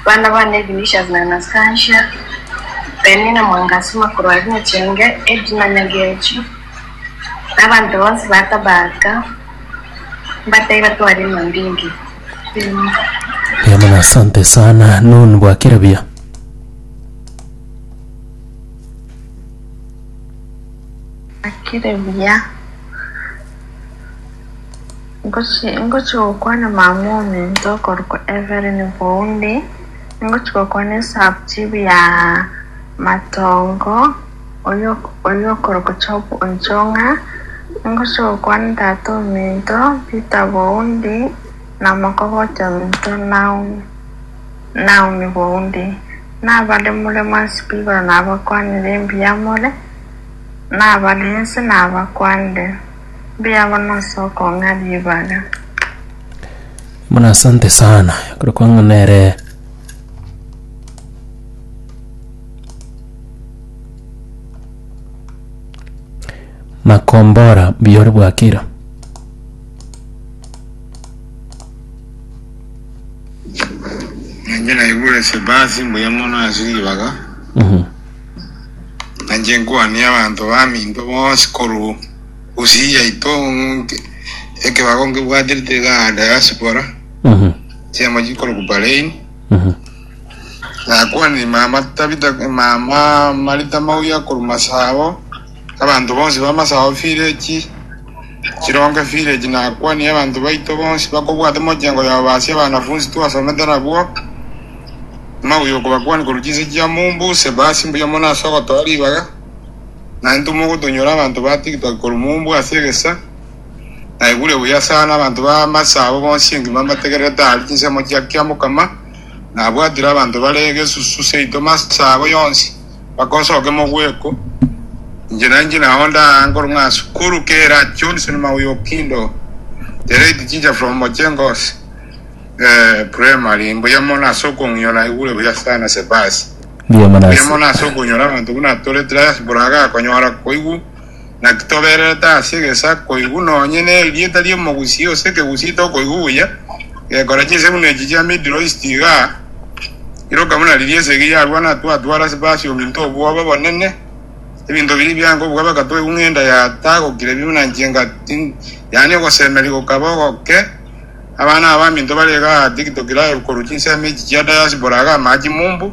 Bana bane, Vinicius na Anastasia, Penina Mwangasima korwa Rwachenge, Edna Nyagechi, na abanto bonsi ba Tabata, mbatebi batware emambinge y'Omonto. Buya mono asante sana nun bwakera buya Bwakire buya. Ingochia gokwana mama ominto okorokwa Evelyn Boundi, ingochia gokwana esubchief ya Matongo oyio okorokwa Job Onchong'a, ingochia gokwana tata ominto Peter Boundi na omokogoti ominto Naomi Boundi. Nabaremure mwansi bw'igoro nabakwanire embuya more, nabare inse nabakwanire. Mbuya mono ase okong'a ribaga. Buna asante sana ekero kwang'ana ere makombora buya ore bwakira Ninye naigure Sebasi mbuya mono ase ribaga. Mhm. Nainche nkwanie abanto baminto bonsi korwa Gusii yaito ng'oke ekebago nkebwaterete ga diaspora chiamo chikorokwa Bahrain. Nakwanire mama Tabitha mama Marita Mauya korwa Masabo, abanto bonsi ba Masabo village. Chironge village nakwanie abanto baito bonsi bakobwate mochengo yao baasie abanafunsi twasomete nabwo amauyo okobakwania korwa chinse chia Mumbuse baasie mbuya mono ase ogotoa ribaga na intwe mogotonyora abanto ba tiktok korwa Mumbu ase egesa naigure buya sana abanto ba Masa abo bonsi engima mbategererete aria chinsemo chia kiamokama nabwatire abanto bare egesusu seito Masa abo yonsi Bakosoke mogweko, inche na inche nao ndaa nkorwa ng'a Sukuru kera Johnson Maui Okindo, the late teacher from Mojengos eh, primary, mbuya mono ase okong'io naigure buya sana Sebasi. Mbuya mono ase okonyora abanto buna tore Trias Buraga konyora koigwa Naki tobererete ase egesa koigwa nonye nerieta ri'omogusii ose ekegusii tokoigwa buya, gekora chinsegino echi chia Middle East iga, iroka buna riria esegi yarwa na twatwara ase Persium intwe obwoba bonene, ebinto biria bia nkobua bakatoigwa ng'enda yatagokire bi buna nchenga ti, yaani ogosemeria gokaba ogoke, abana abanto bare iga atigitokire aye korwa chinsemo echi chia diaspora iga amaache mumbu.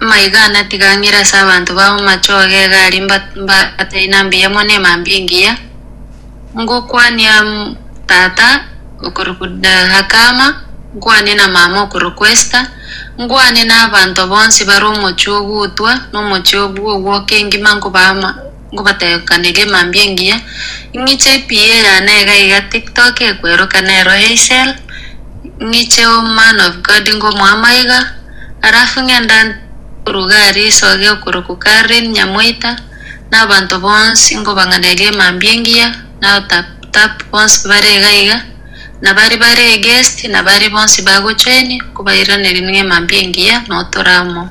Maiga natiga ang'ire ase abanto babo machoge egari mba- mbataina mbuya mono emambia engiya, ngokwania mm, tata okorokwa eh, Hakama, nkwane na mama okorokwa Esta, nkwane na abanto bonsi bare omochie ogutwa, na omochie obwo ogwoka engima nkobaa ama- ngobatekanege mambia engiya, ing'iche EPA yane iga iga TikTok ekweroka nero Heysel, ing'iche man of God ngomoama iga, alafu ng'enda koruga aria esoge okorokwa Carlin Nyamoita, na abanto bonsi ngobang'anege mambia engiya, na otap tap bonsi bare iga iga, na baria bare eguest, na baria bonsi bagochoeni, nkobairanerie ning'e mambia engiya, notora amo.